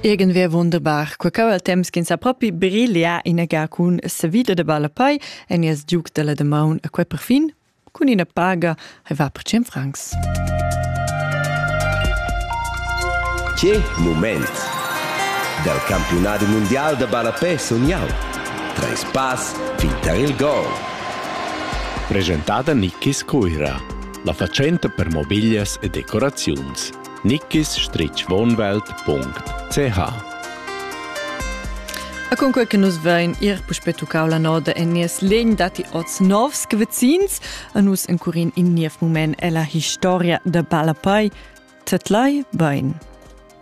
Egen ve wunderbar, qua cau al temps ch'ins ha propi brilia ina ga cun savida de balapai en ies giuc della de maun a quei perfin cun ina paga hai va per 100 francs. Che moment! Dal campionat mondial de balapè sun jau. Treis pass fin tar il gol. Presentada Nikis Cuira, la fatschenta per mobiglias e decoraziuns. nickis-wohnwelt.ch E cun quel che nus vein ir puspe tuccau la noda en nies legn datti oz novs che vecins a nus encurin in niev mument è la historia da Balapai Tetlai Bein.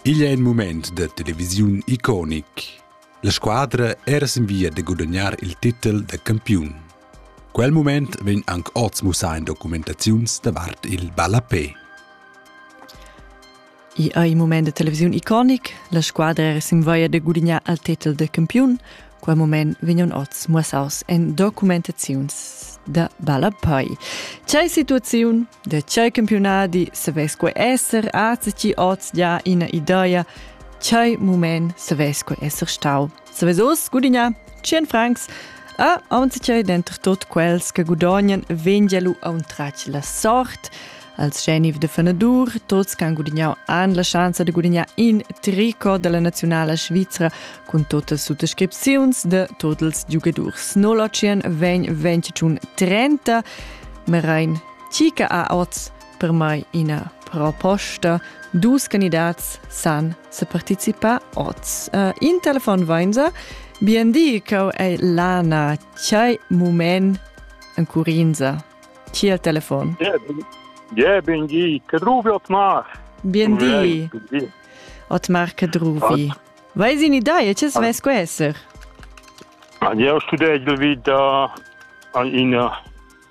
Igl è in moment da televisiun iconic. La squadra era sin via da gudagnare il titel da campiun. Quel mument vegn anc oz mussà en documentaziuns davart il ballapè. I è in moment de televisiun iconic, la squadra era sin via de gudignar al titel de campiun. Quel moment vegnan oz mussaus en documentaziuns da ballapei. C'è situazione de c'è campionati se vesque esser azi ci oz già ina idea, c'è moment se vesque esser stau. Savesos gudigna 100 francs a aunzitgei denter tot quels che gudognan vengia lu auntrach la sort als scheniv de fenadur, tots can gudignau han la chance de gudignar in tricot della nazionala svizra cun totas suttascripziuns de tots ils giugadurs. 08 vegn 25 30 Merein Tica a oz per mai ina proposta. Dus candidats san se participar oz. Uh, in telefon vainza, bien di, cau ei lana, chai mumen en curinza. Chi il telefon? Je, ben di, Cadruvi Otmar. Bien di. Otmar Cadruvi. Weiß in idea, che es vesco esser? Io studegel vid uh, an ina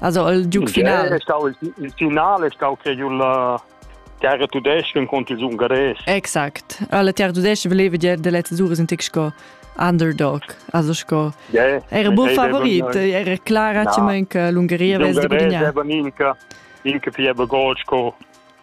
Also il giu final. Il, stau, il, il final è stato che io la terra tudesca contro il ungares. Exakt. Alla terra tudesca voleva dire delle tesure sind sco underdog, also sco yeah, era buon favorit, era clara no. ci manca l'Ungheria vez di guadagnare. Era minca minca più bagol sco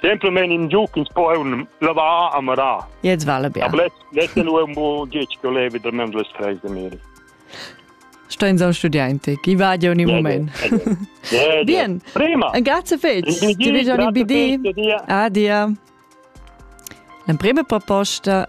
Gentleman in giuc ins po un lavar a marar. Jetzt vale bene. Aber letzte nur un bo gic che levi da mem les treis de miri. Stein so studiante, chi va di ogni moment. Bien. Prima. Grazie fetch. Ti vedo ogni BD. Adia. La prima proposta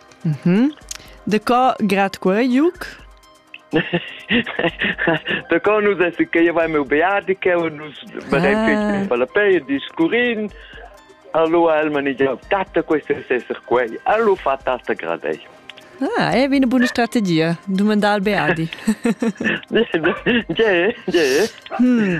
De co grad quei juc? da co nus es che io vai meu beatiche und nus vedem ah. che fa la pei discurin allora el manager tata questo è esser quei allora fa tata gradei Ah, è una buona strategia, domandare al Beati. C'è, c'è. Hmm.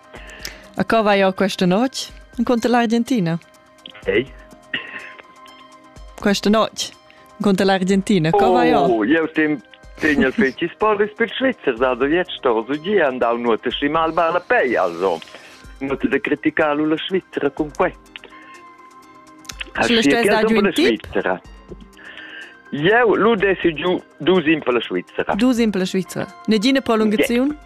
A co vai jau questa notte? Incontra l'Argentina? Ehi? Questa notte? Incontra l'Argentina? Co vai jau? Oh, eu tem tegna feci sporris per Schweizer da da vietsto, so gi andau nuota schi mal bala pei, also. Nuota de criticarlo la Svizzera con que. Sulla stessa giù in Svizzera. Eu lu desi giù du simple Svizzera. Du simple Svizzera. Ne gine prolungazione? Yeah.